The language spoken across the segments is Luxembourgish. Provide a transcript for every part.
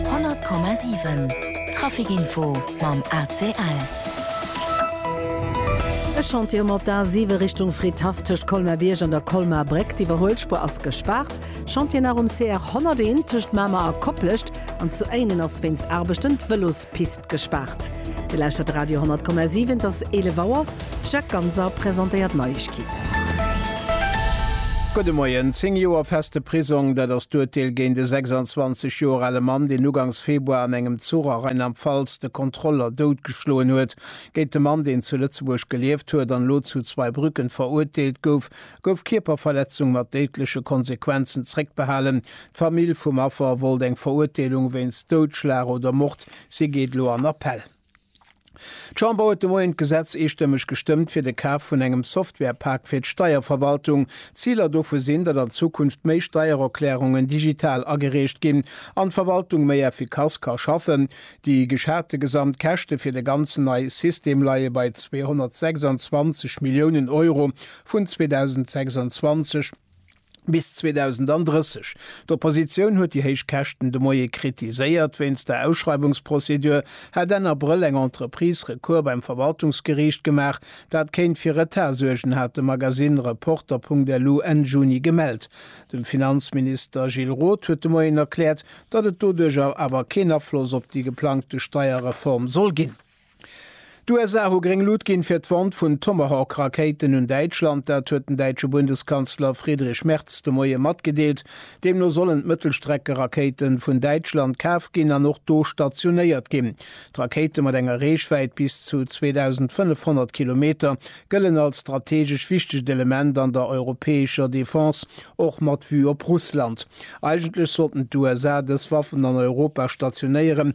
100,7 Trafic Info mam ACL. E Chantier um op der A 7 Richtung Fridhaff tëscht Colmer Bierg an der Colmer Bréck. D'Iwwerhuelspuer ass gespaart. Chantier nach um CR 101 tëscht Mamer a Koplescht an zu Éinen ass wéinst Aarbechten d'Vëlospuer. Pist gespaart. Dir lauschtert Radio 10,7, et ass 11 Auer. Jacques Ganser presentéiert d'Neiegkeeten. Gudde Moien. Zéng Joer feste Prisong, dat ass d'Urteel géint e 26 Joer ale Mann, deen ugangs Februar an engem Zuch a Rheinland-Pfalz de Kontroller doutgeschloen huet. Géint de Mann, deen zu Lëtzebuerg gelieft huet an elo zu Zweibrücken verurteelt gouf, gouf Kierperverletzung mat déidleche Konsequenzen zréckbehalen. D'Famill vum Affer wollt eng Verurteelung wéinst Doudschlag oder Mord, si geet elo an Appell. D'Chamber huet de Moien d'Gesetz eestëmmeg gestëmmt fir de Kaf vun engem Software-Pak fir d'Steierverwaltung. Ziler dovu sinn, datt an Zukunft méi Steiererklärungen digital agereecht ginn an d'Verwaltung méi effikass ka schaffen. Déi geschate Gesamtkäschte fir de ganzen neie System leie bei 226 Milliounen Euro vun 2026. bis 2030. D'Oppositioun huet déi héich Käschten de Moie kritiséiert. Wéinst der Ausschreiwungsprozedur hätt Enn Abrëll eng Entreprise Recours beim Verwaltungsgeriicht gemaach. Dat kéint fir Retard suergen, hat de Magasinn Reporter.lu Enn Juni gemellt. De Finanzminister Gilles Roth huet de Moien erkläert, datt et doduerjer awer keen Afloss op déi geplangte Steierreform soll ginn. D'USA hu gréng Lut ginn, fir d'Vente vun Tomahawk-Rakéiten un Däitschland. Dat huet den däitsche Bundeskanzler Friedrich Merz de Moie matgedeelt. Deemno sollen d'Mëttelstreckerakéite vun Däitschland kaf ginn an och do stationéiert ginn. D'Rakéite mat enger Reechwäit bis zu 2.500 Kilometer gëllen als strategesch wichtegt Element an der europäescher Defense, och mat Vue op Russland. Eigentlech sollten d'USA dës Waffen an Europa stationéieren,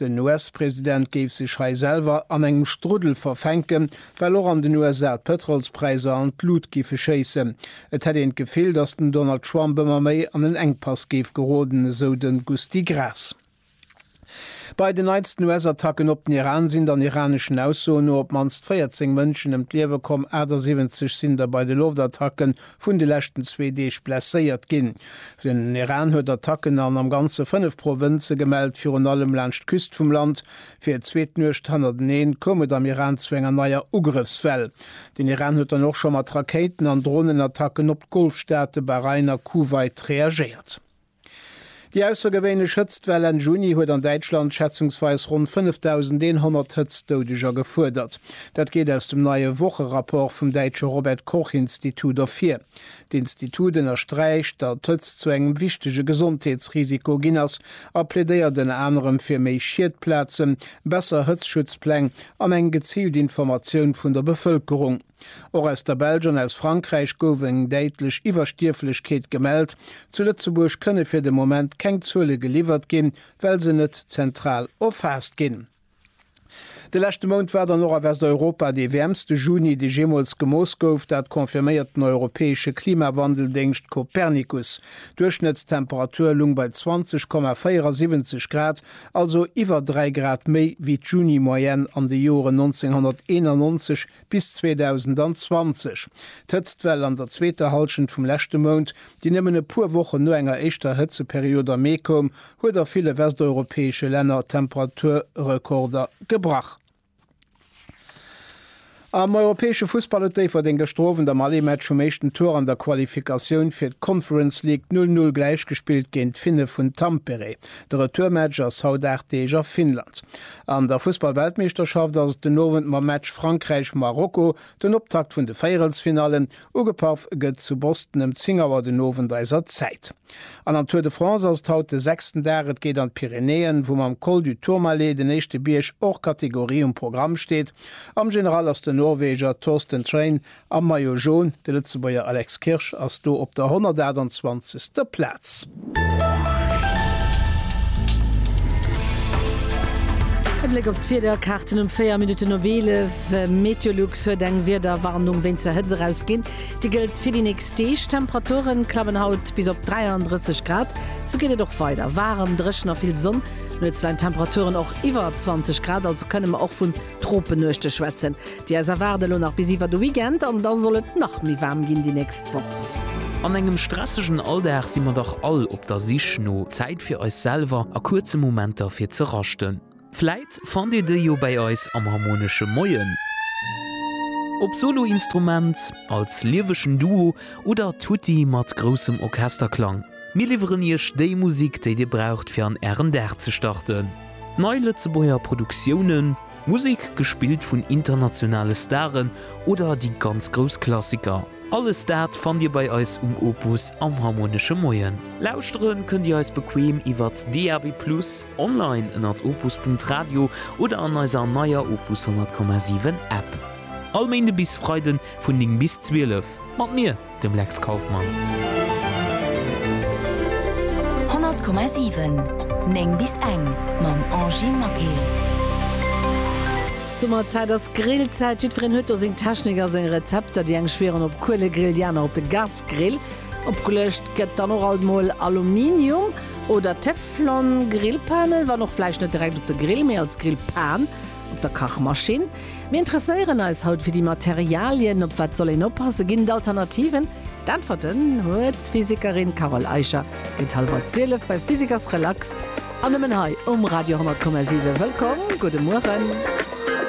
Den US-President géif sech hei selwer an engem Struddel verfänken, well och an den USA d'Pëtrolspräisser an d'Lut géife schéissen. Et hätt een d'Gefill, datt den Donald Trump ëmmer méi an en Enkpass géif geroden, esou de Gusty Graas. Bei den neitsten US-Attacken op den Iran sinn dann iraneschen Aussoen no op d'mannst 14 Mënschen ëm d'Liewe komm, 78 sinn der bei de Loftattacken vun de leschten zwee Deeg blesséiert ginn. Den Iran huet Attacken an am Ganze fënnef Provënze gemellt, virun allem laanscht d'Küst vum Land. Fir d'zweet Nuecht hannerteneen koum et am Iran zu enger neier Ugrëffswell. Den Iran huet dann och scho mat Rakéiten an Dronenattacken op d'Golfstaate Bahrain a Kuwait reagéiert. Déi aussergewéinlech Hëtztwell Enn Juni huet an Däitschland schätzungsweis ronn 5.100 Hëtztdoudeger gefuerdert. Dat geet aus dem neie Wocherapport vum däitsche Robert Koch Institut ervir. D'Institut ënnersträicht, datt d'Hëtzt zu engem wichtege Gesondheetsrisiko ginn ass a plädéiert ënner anerem fir méi Schiedplazen, besser Hëtzschutzpläng an eng geziilt Informatioun vun der Bevëlkerung. Och aus der Belsch an aus Frankräich gouf eng däitlech Iwwerstierflechkeet gemellt. Zu Lëtzebuerg kënne fir de Moment keng Zuele geliwwert ginn, well se net zentral erfaasst ginn. De leschte Mount war dann och a Westeuropa dee wäermste Juni, dee jeemools gemooss gouf. Dat confirméiert den europäesche Klimawandel-Déngscht Copernicus. D'Duerchschnëttstemperatur lung bei 20,74 Grad, also iwwer 3 Grad méi wéi d'Juni-Moyenne an de Joren 1991 Bis 2020. D'Hëtztwell an der zweeter Hallschent vum leschte Mount, déi nëmmen e puer Wochen no enger éischter Hëtzeperiod am Mee koum, huet a ville westeuropäesche Länner Temperaturrekorder gebrach. Am europäesche Fussball huet Déifferdeng gëschter Owend am Allé-Match um éischten Tour an der Qualifikatioun fir d'Conference League d'Null Null gläichgespillt géint d'Finne vun Tampere. De Retourmatch ass haut 8 Deeg a Finnland. An der Fussballweltmeeschterschaft ass et den Owend mam Match Frankräich-Marokko, den Optakt vun de Véierelsfinallen. Ugepaff gëtt zu Boston ëm 10 Auer den Owend eiser Zäit. An am Tour de France ass et haut de sechsten Dag. Et geet an d'Pyrenäen, wou mam Col du Tourmalet, den éischte Bierg hors catégorie, um Programm steet. Am General ass den Norweger Torsten Train Am Maillot Jaune, de Lëtzebuerger Alex Kirsch ass do op der 128. Plaz. E Bléck op d'Wiederkaarten um 4 Minutten op 11. Meteolux huet eng Wiederwarnung wéinst der Hëtzt erausginn. Déi gëllt fir déi nächst Deeg. D'Temperature klammen haut bis op 33 Grad. Sou geet et och weider, waarem, dréchen a vill Sonn. Nuets leien d'Temperaturen och iwwer 20 Grad, also kënne mer och vun Tropenuechte schwätzen. Déi aus erwaarde lo nach bis iwwer de Weekend an da soll et nach méi waarm ginn déi nächst Woch. An engem stressegen Alldag si mer dach all op der Sich no Zäit fir eis selwer a kuerze Momenter fir ze raschten. Vläit fannt Dir déi jo bäi eis am Harmonesche Moien, op Soloinstrument, als liewegen Duo oder tutti mat groussem Orchesterklang. Mir liwweren Iech déi Musik, déi Dir braucht fir an Ären Dag ze starten. Nei Lëtzebuerger Produktiounen, Musek gespillt vun internationale Staren oder déi ganz grouss Klassiker, alles dat fannt Dir bei eis um Opus am Harmonesche Moien. Lauschtere kënnt Dir eis bequeem iwwert DAB+, online ënnert opus.radio oder an eiser neier Opus 100,7 App. All Méinde bis Freiden vun 9 bis 12 mat mir. dem Lex Kauffmann. 100,7 9 bis eng mam Angy Maquet. Summerzäit ass Grillzäit. Jiddwereen huet do seng Technik a seng Rezepter. Déi eng schwieren op Kuelegrill, déi aner op de Gasgrill. Opgeluecht gëtt dann och alt mol Aluminium oder Teflon-Grillpanen, wann och vläicht net direkt op de Grill, mee als Grillpan op der Kachmaschinn. Mir interesséieren eis haut fir déi Materialien. Op wat soll een oppassen? Ginn et Alternativen? D'Äntwerten huet d'Physikerin Carole Eicher. Géint hallwer 12 bei Physikers Relax an nëmmen hei um Radio 10,7. Wëllkomm, gudde Mueren.